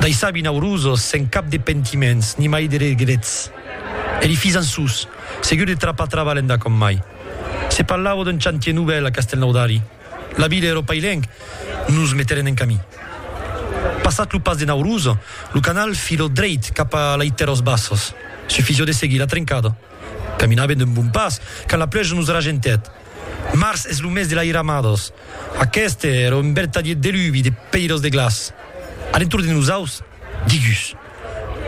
dei sabi naurosos sen cap de pentiments ni mai de regrets. E li fis ançús, segur de trapar trabalh enda com mai. Se parlavo d'un chantier novèl a Castelnaudari. La vila e ro pailenc nos meteren en camí. Passat lo pas de Nauroso, lo canal filó dreit cap a lei Terros Bassos. Sufisó de seguir la trencada. Caminaven d'un bon pas quand la pluèja nos ragentèt. Març es lo mes de l'airamados. Aqueste ère un vertadier deluvi de pèiros de glaç. A l'entorn de nosaus, digus,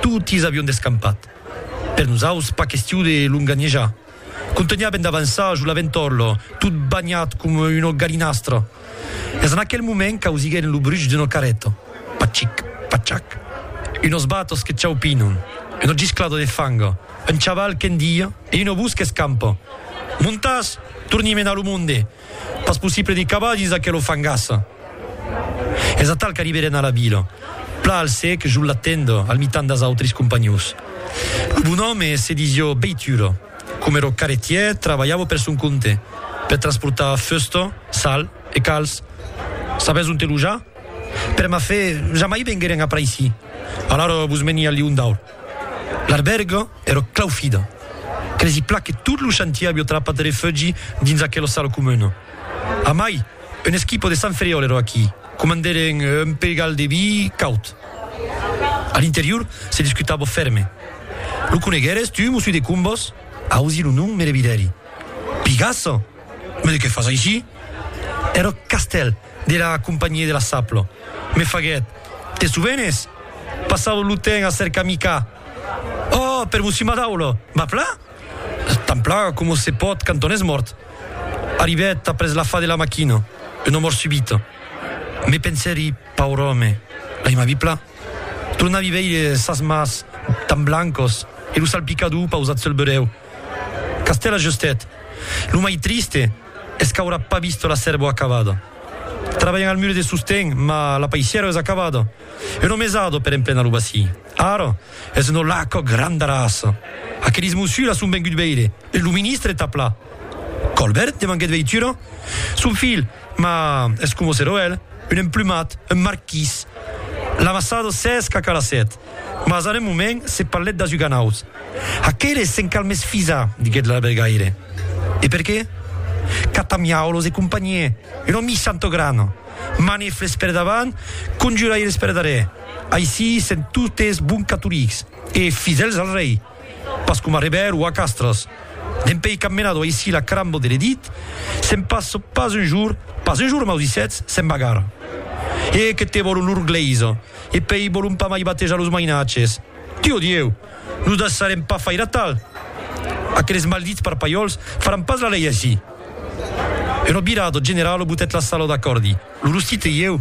totis avion descampat. Per nosaus, pas question de longanhejar. Contunhaven d'avançar jo la ventorlo, tot banhat coma una galinastra. Es en aquel moment qu'ausiguem lo bruch d'una carreta, pachic, pachac, unos batos que chaupinon, una gisclada de fanga, un chaval qu'endia e una vos qu'escampa, Montas! Torni menar lo monde! Pas possible de cavar dins aquela fangassa! Es atal qu'arriberem a la vila, pla al sec, jol la tenda, al mitan das autris companhons. Lo bon òme se disió beitura. Coma ero carretièr, trabalhavo per son compte, per transportar fusta, sal e calç. Sabètz ont te lojar? Per ma fe, jamai vengueren après ici. Alara vos meni al Lion d'Aur. L'arbèrga ero claufida. Cresi plan que tot lo chantier avió trapat refugi dins aquela sala comuna. Amai, un esquipo de Sant Ferriòl ero aquí. Comandèren un pegal de vi caut. A l'interior se discutava fèrme. Lo coneguères tu, Mossú de Combòs? Ausi lo nom, me revidèri. Pigassa? Mas de qué fas aicí? Èra eth castèl de la Companhia de la Sapla. Me faguèt, Te sovenes? Passava lo temps a cercar Micà. Ò, per Mossú Madaula! Mapla? Tanpla coma se pòt quand on es mòrt. Arribèt après la fa de la maquina, una mòrt subita. Me pensèri, paur òme, l'ai mai vipla. Tornavi veire sas mas tan blancos e lo salpicador pausat sul berèu. Castèl ajustèt, Lo mai triste es qu'aurà pas vist la sèrva acabada. Trabalhan al mur de sosten, mas la paisièra es acabada. Un òme es ado per emplenar lo bacilh. Ara, es una laca grandarassa. Aquelis mossuras son venguts veire e lo ministre tap la. Colbert? demanguèt Veitura. Son filh, ma es coma ser oèl, un emplumat, un marquís. L'amassada s'es cacalassèt, mas en un moment se parlèt d'asuganauts. Aqueles s'en cal mès fisar, diguèt l'albergaire. E per qué? Catamiaulos e companhier, una missa entà grana. Manefles per davant, conjuraires per darrèr. Aicí sèm totes bons catolics e fidèls al rei, pas coma Rever o a Castres. Dempèi qu'am menado aicí la carambò de l'Edit, sèm pas pas un jour, pas un jour maudissèts, sèm vagar. E que te vòlon lor glèisa, e pèi vòlon pas mai batejar los mainatges. Dieu, Dieu! Nos daissarem pas faire atal! Aqueles maldits parpalhòls faràn pas la lei aicí! Una virada generala botèt la sala d'acòrdi. Lo rostit e ieu.